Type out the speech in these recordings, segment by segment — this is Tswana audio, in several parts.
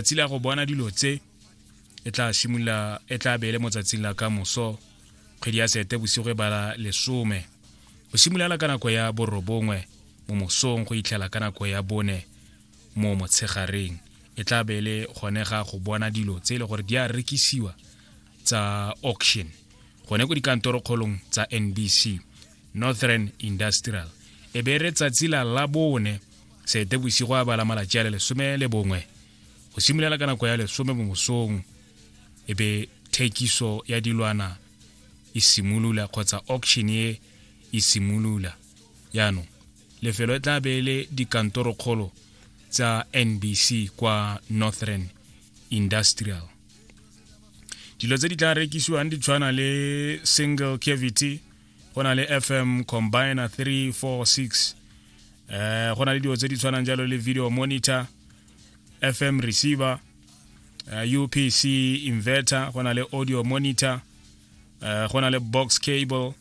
tsatsi la go bona dilo tse e tla simolola e tla beele mo tsatsing la ka moso kgwedi ya sete bosigo e bala lesome go simolola ka nako ya borobongwe mo mosong go itlhela ka nako ya bone mo motshegareng e tla beele gone ga go bona dilo tse e le gore di a rekisiwa tsa auction gone ko dikantorokgolong tsa nbc northern industrial e be re tsatsi la labone seetebosigo a bala malatši a le lesome le bongwe go simolola ka nako ya lesome mo mosong e be thekiso ya dilwana e simolola kgotsa auction e e simolola jaanong lefelo e tla be e le dikantorokgolo tsa nbc kwa northern industrial dilo tse di tla rekisiwang di tshwana le single cavity go na le fm combiner 346 eh go na le dilo tse di tshwanang jalo le video monitor fm receiver uh, eh, upc inverter go na le audio monitor uh, go na le box cable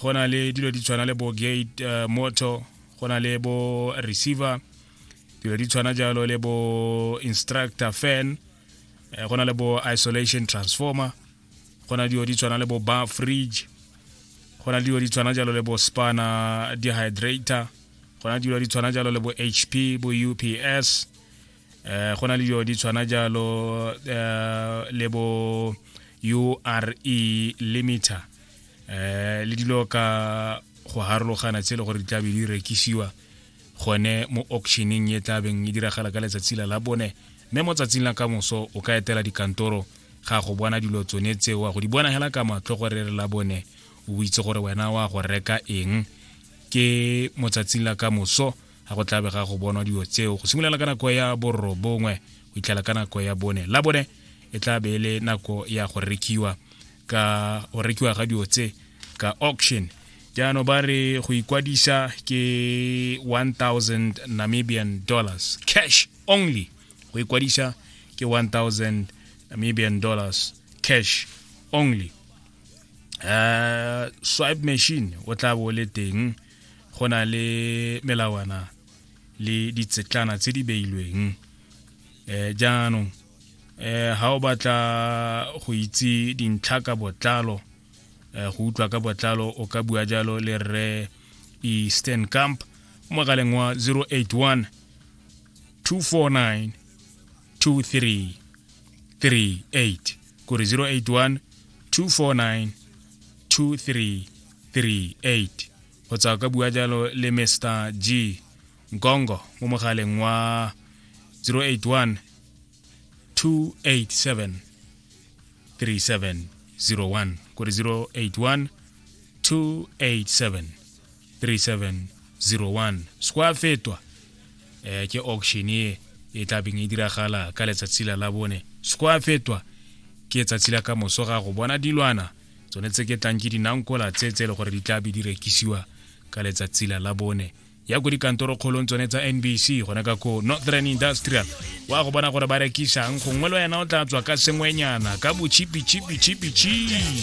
go na le dilo di tshwana le bo gate uh, motor go na le bo receiver dilo di tshwana jalo le bo instructor fan go na le bo isolation transformer go na dilo di tshwana le bo bar fridge go na dilo di tshwana jalo le bo spana dehydrator go na dilo di tshwana jalo le bo hp bo ups eh go na le dilo di tshwana jalo eh, le bo ure limiter eh le dilo ka go harologana tse e le gore di tlabe di rekisiwa gone mo auctioneng e tla beng e diragala ka letsatsi la la bone mme mo tsatsing la ka moso o ka etela dikantoro ga go bona dilo tsone tse wa go di bona hela ka matlho gore re la bone o itse gore wena wa go reka eng ke mo tsatsing la ka moso ga go tlabe ga go bonwa dilo tseo go simolola ka nako ya borobongwe go itlhela ka nako ya bone la bone e tla be e le nako ya go rekiwa ka o rekiwa ga dilo tse ka auction jaanong ba re go ikwadisa ke 1000 namibian dollars cash only go ikwadisa ke 1000 namibian dollars cash only uh, swipe machine o tla bo le teng go na le melawana le ditsetlana tse di beilweng eh jaanong eh ha o batla go itse dintlha ka botlalo eh go utlwa ka botlalo o ka bua jalo le rre Eastern Camp mogaleng wa 081 249 2338 kore 081 249 2338 go tswa ka bua jalo le mr g nkongo mo mogaleng wa 081 287 3701 kore 081 287 3701 sco a fetwa eh ke auction e e tla beng e diragala ka letsatsi la la bone sco a fetwa ke tsatsi la ka moso ga go bona dilwana tsone tse ke tlang ke dinankola tse tse e le gore di tla be di rekisiwa ka letsatsi la la bone ya ko dikantorokgolong tsone tsa nbc gona ka ko northern industrial wa go bona gore ba rekisang gongwe le wena o tla tswa ka sengwenyana ka bochipichipichipichi